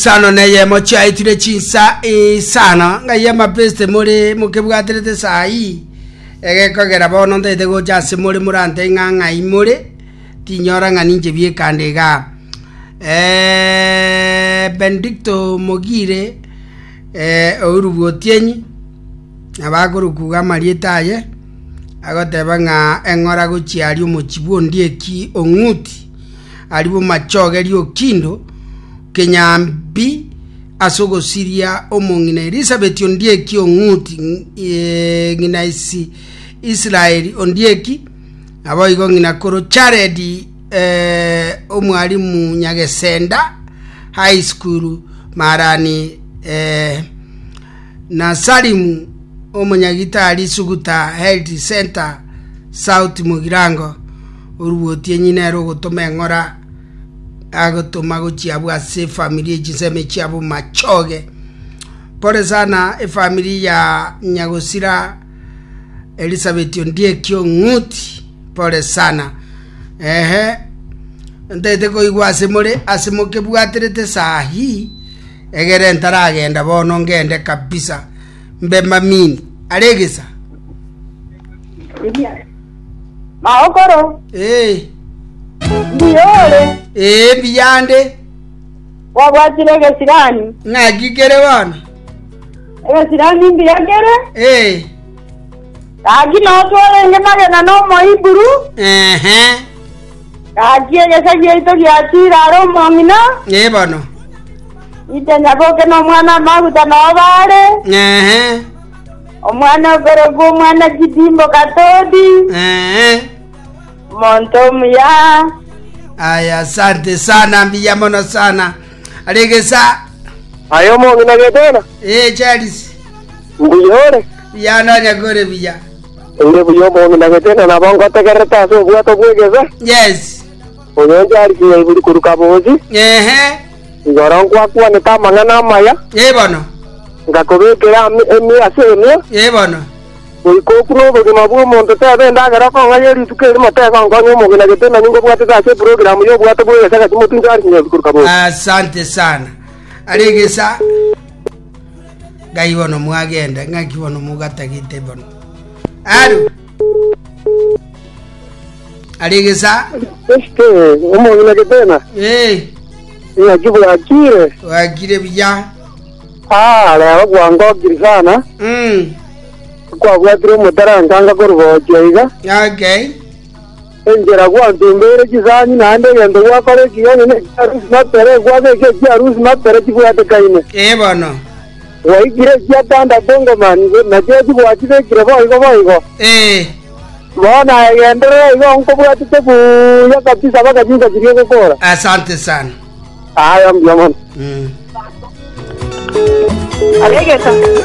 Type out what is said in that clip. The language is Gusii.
Isano neyemo chiaitire chinsa isano, ng'ai amapeste more mokebwaterete esaa eyio, egekogera bono ntaete gocha ase more morantee ng'a ng'ai more, tinyora ng'a ninche biekande igaa. Eh, Benedicto Mogire eh, ourugwa Otienyi, nabo akorukuga amarieta aye, agoteba ng'a eng'ora gochia aria omochie bw'Ondieki Ong'uti, Aria bomachogerie okindo kenyambi ase ogosiria omong'ina Elisabeti ondieki ong'uti ng'ina isi Israeli ondieki, naboigo ng'ina koro Charedi eh, omwarimu Nyagesenda High School Marani eh, na Salimu omonyagitari Suguta Health Centre South Mugirango, orubotie ng'ina ere ogotoma eng'ora agotoma gochia abwo ase efamiri y'echisemi chiabo machoge. Pore sana efamiri ya Nyagosira Elizabeth Ondieki Ong'uti, pore sana. Ehe, ntete koigwa ase more ase mokebwaterete saa hii Egere ntaragenda bono ngende kabisa, mbe mamini are egesa. Maokoro. Ee. Mbuya ore. Ee, mbiyande. Wabwatire egesirani. Ng'aki kere bono? Egesirani mbuya kere. Ee. Gaki notwarenge magena n'Omohiburu. Ehe. Gaki egecha giaito giachire are omong'ina, Ee bono. Ite nyaboke na omwana-o-maguta nao baare, Ee. omwana okorokwa omwana chidimbo Katodi, Ee. omonto omuya. Aya, asante sana, mbuya mono sana. Are egesa. Aye omong'ina Getena, Ee, Charles. mbuya ore? Buya nonya kore buya. Oire buya omonto na gete, na nabo ngotegererete ase obwato bw'egefe, Yes. oyo oncha ari kinya iburi korwa kaboochi, Ehe. igoro nkwakwanete amang'ana amaya, Ee bono. ngakobekera ame emia ase emia, Ee bono. goika okune obogima bw'omonto. Teeba endagera okong'aia rituko eri, motegonkonya omogina gete nanyinga obwatete ase eprogramu y'obwato bw'egefe, gati motunche ari kinya iburi korwa kaboochi. Asante sana. Ari egesa. Ngai bono mwagenda, ng'aki bono mogatagete bono? Alo. Ari egesa. Este, omong'ina getena. Eh. Ng'aki bwakire. Bwakire biya. Ah, rero kwangokiri sana. Mm. Kwabwatire omotaranka ngakorugochia iga. Okay. Enchera gwantumbeire chisani naende egento gwakora ekinyanya nekiarusi mapera egwake ekia ekiarusi mapera chibwatekaine. Ee bono. Gwaikire echia tandato ngomani, na chiachi gwachibekire boigo boigo. Ee. Bono aye genderera igo nkobwatete buya kabisa mpaka chinsa chiria ogokora. Asante sana. Aye mbuya mono. Aregete.